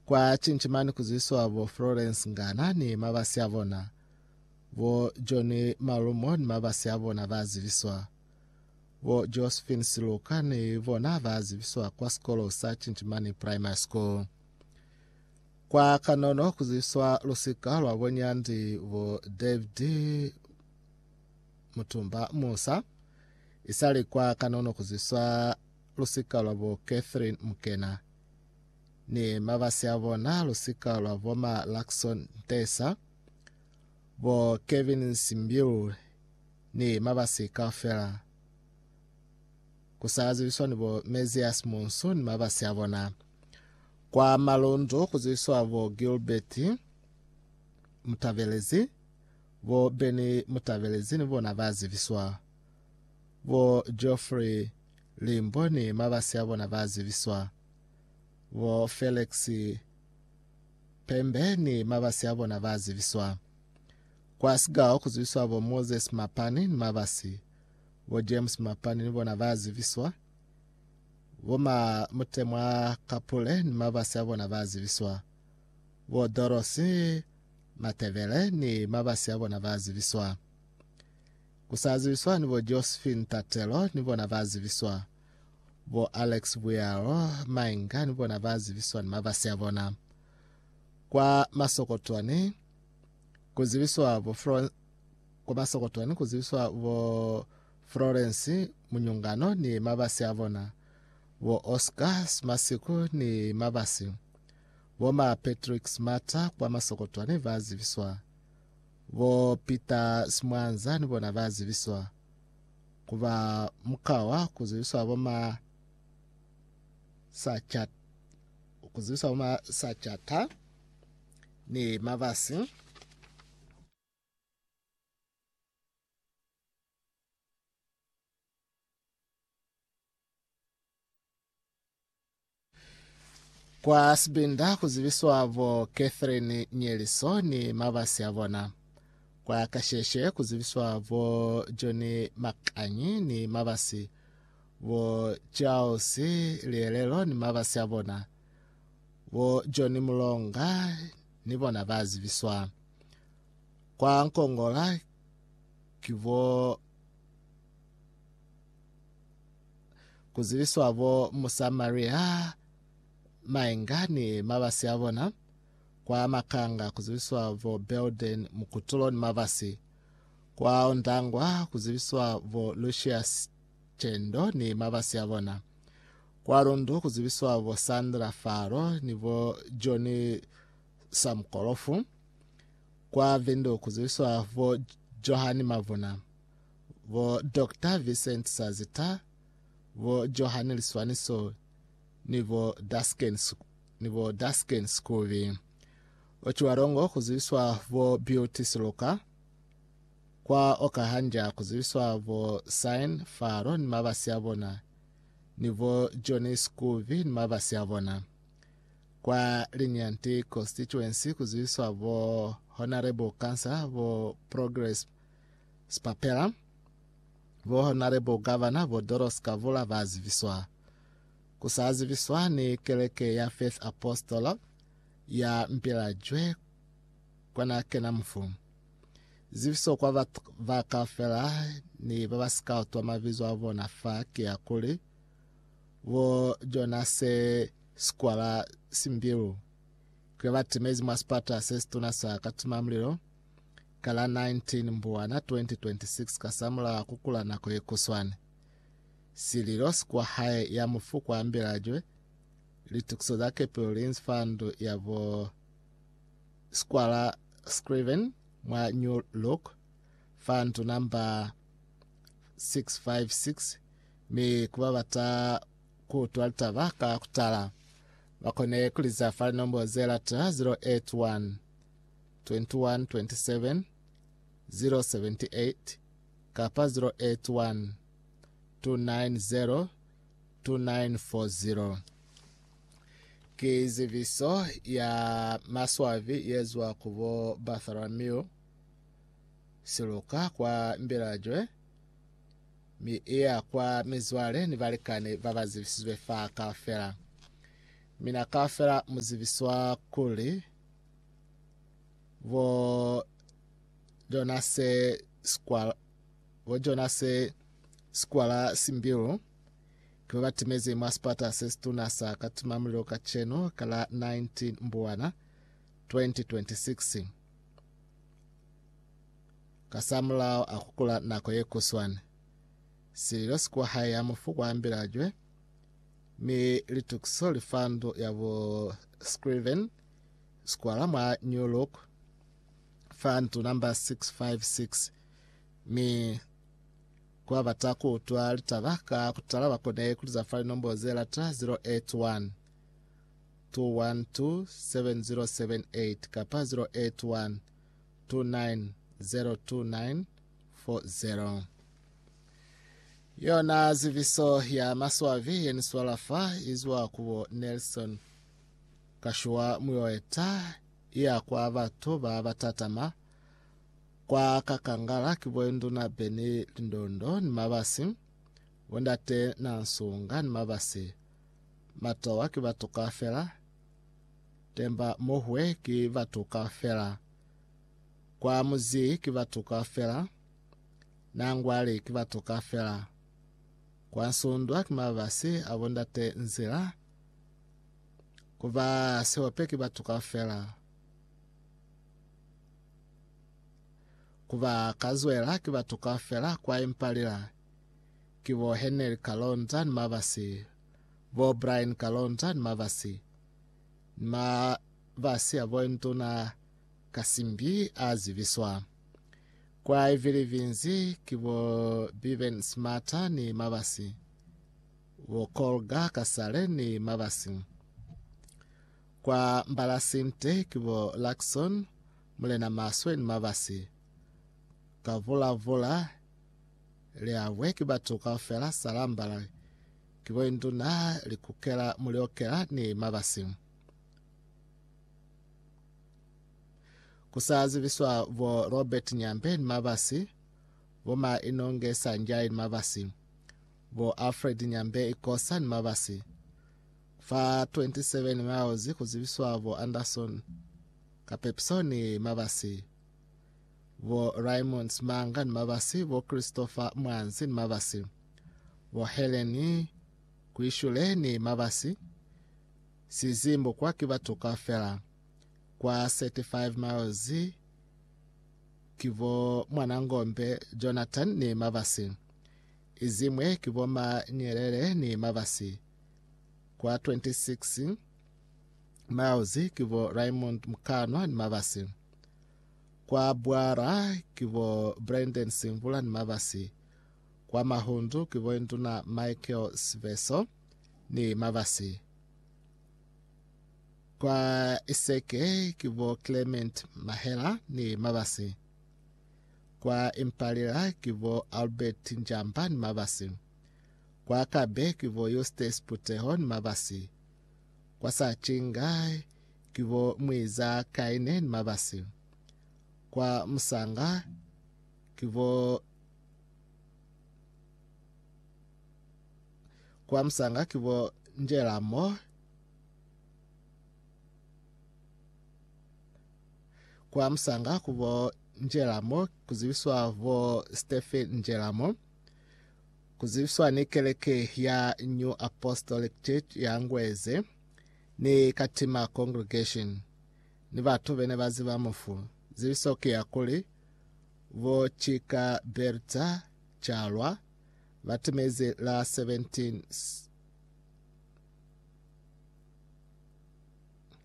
Kwa cinci mani kuzwiswa bo Florence Ngana ni mabasi abona, bo John Malumo ni mabasi abona ba zibiswa. Bo Josephine Siluka ni bona ba zibiswa kwa sikolo sa Cinchimani Primary School. Kwa kanono kuzwiswa lusika lwa bo Nyandi bo David Mutumba Musa isali kwa kanono kuzwiswa lusika lwa bo Catherine Mukena ni mabasi a bona, lusika lwa bo ma Luckson Ntesa, bo Kevin Nsimbilu ni mabasi kaufela. Kusazibiswa ni bo Mesias Munsu ni mabasi a bona. Kwa Malundu kuzibiswa bo Gilbert Mutabelezi, bo Benny Mutabelezi ni bona bazibiswa. Bo Geoffrey Limbo ni mabasi a bona ba zibiswa. Bo Felix Pembe ni mabasi a bona ba zibiswa. Kwa Sigao ku zibiswa bo Moses Mapani ni mabasi. Bo James Mapani ni bona ba zibiswa. Bo ma Mutemwa Kapule ni mabasi a bona ba zibiswa. Bo Dorothy Matebele ni mabasi a bona ba zibiswa. Ku sa zibiswa ni bo Josephine Tatelo ni bona ba zibiswa. Bo Alex Buyaro Mainga ni bona ba zibiswa ni mabasi a bona. Kwa Masokotwani ku zibiswa bo Florence kwa Masokotwani ku zibiswa bo Florence Munyungano ni mabasi a bona. Bo Oscar Smasiku ni mabasi. Bo ma Patrick Smata kwa Masokotwani ba zibiswa. Bo Peter Simwanza ni bona ba zibiswa ku ba mukwa wa ku zibiswa bo ma sachat ku zibiswa bo ma sachata ni mabasi Kwa sibinda ku zibiswa bo Catherine Nyeliso ni mabasi a bona. Kwa kasheshe ku zibiswa bo John Makanyi ni mabasi, bo Charles Lielelo ni mabasi a bona. Bo John Mulonga ni bona ba zibiswa. Kwa Nkongola ki bo ku ziviswa bo Musamaria mainga ni mabasi a bona, kwa makanga ku ziviswa bo Belden mukutulo ni mabasi, kwa ondangwa ku ziviswa bo Lucius Chendo ni mabasi a bona, kwa lundu ku ziviswa bo Sandra Faro ni bo Johnny Samkolofu, kwa Vindu ku ziviswa bo Johan Mavuna. bo Doctor Vincent Sazita, bo Johan Liswaniso ni bo Dasken, ni bo Dasken Skubi. Ocwalongo kuzibiswa bo Beauty Siluka, kwa Okahanja kuzibiswa bo Sign Faro ni mabasi a bona, ni bo Johnny Skubi ni mabasi a bona. Kwa Linyanti Constituency kuzibiswa bo Honorable Councillor bo Progress Sipapela, bo Honare bo Gavana bo Doros Kavula ba zibiswa. Ku sa zibiswa ni keleke ya Faith Apostle ya Mpilajwe kwa na kena mufu. Zibiso kwa batu ba kaufela ni ba ba si ka utwa mabizo a bona fa ki ya kuli, bo Jonase Sikwala Simbilu, kile ba timezi mwa sipata se situna sa katimamulilo, ka la 19 Mbwana 2026 kasamulaho kukula nako yekuswane. Sililo sikwa hae ya mufu kwa Mbilajwe, litukiso za Capital Linz Fund ya bo Squala Scriven mwa New Look Fund number 656 mi kuba bata kuutwa litaba ka kutala bakone kuliza fa linombo ze lata 081 091 kapa 081 290 2940. Ki zibiso ya maswabi yezwa ku bo Bartholomew siluka kwa Mbilajwe mi iya kwa mizwale ni balikani babazibisizwe fa kaufela. Mina kaufela muzibiswa kuli bo Jonase Sikwala, bo Jonase Sikwala Simbilu ke ba ba timezi mwa sipata se situna sa Katimamulilo kacenu ka la 19 Mbuwana 2026. Kasamulaho a kukula nako ye kuswana, sililo si kwa hae ya mufu kwa ambila jwe, mi litukiso li fa ndu ya bo Scriven Square mwa New Look, fa ntu namba 656, mi kwa bata ku utwa litaba ka kutala ba kone ku liza fa linombo ze lata 081 2127078 kapa 081 2902940. Yona ziviso ya maswavi ye ni swala fa izwa ku bo Nelson ka shwa muyoeta iya kwa batu ba batatama kwa kakangala kibo induna beni lindondo ni mabasi bo ndate na nsunga ni mabasi matowa ki batu kafela temba mohwe ki batu kafela kwa muzi ki batu kafela na ngwali ki batu kafela kwa nsundwa ki mabasi abo ndate nzila Ku ba sihope ki batu kaufela. Ku ba kazwela ki batu kaufela kwa Impalila, ki bo Heneli Kalonza ni mabasi, bo Brian Kalonza ni mabasi, ni mabasi ya bo Nduna Kasimbi a zibiswa. Kwa Ivilivinzi ki bo Biben Smata ni mabasi. bo Kolga kasale ni mabasi. Kwa Mbalasinte ki bo Luckson, Mulena Maswe ni mabasi. Ka Vulavula, Liabwe ki batu kaufela Salambala ki bo Induna Likukela Muliokela ni mabasi. Ku sa zibiswa bo Robert Nyambe ni mabasi, bo Ma Inonge Sanjai ni mabasi. Bo Alfred Nyambe Ikosa ni Mabasi, fa 27 miles ku zibiswa bo Anderson Kapepiso ni Mabasi, bo Raymond Simanga ni Mabasi, bo Christopher Mwanzi ni Mabasi, bo Helen Kuishule ni Mabasi, Sizimbo kwa ki batu kaufela, kwa 35 miles ki bo Mwanangombe Jonathan ni Mabasi. Iziñwi ki bo ma nyelele ni mabasi. Kwa 26 miles ki bo Raymond Mkanwa ni mabasi. Kwa Bwara ki bo Brandon Simvula ni mabasi. Kwa Mahundu ki bo Induna Michael Siveso ni mabasi. Kwa Iseke ki bo Clement Mahela ni mabasi. Kwa Impalila ki bo Albert Njamba ni mabasi. Kwa Kabe ki bo Eustace Puteho ni mabasi. Kwa Sacinga ki bo Mwiza Kaine ni mabasi. Kwa Musanga ki bo kwa Musanga ki bo Njelamo kwa musanga ku bo Njelamo ku zibiswa bo Stephen Njelamo ku zibiswa ni keleke ya New Apostolic Church ya Ngweze ni Katima Congregation ni batu bene ba ziba mufu zibiso ki ya kuli bo Chika Bertha Chalwa ba timezi la 17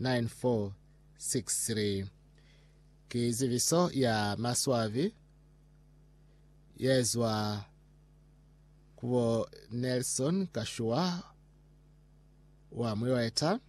9463 ki zibiso ya maswabi ye zwa ku bo Nelson Kashuwa wa Mwiweta.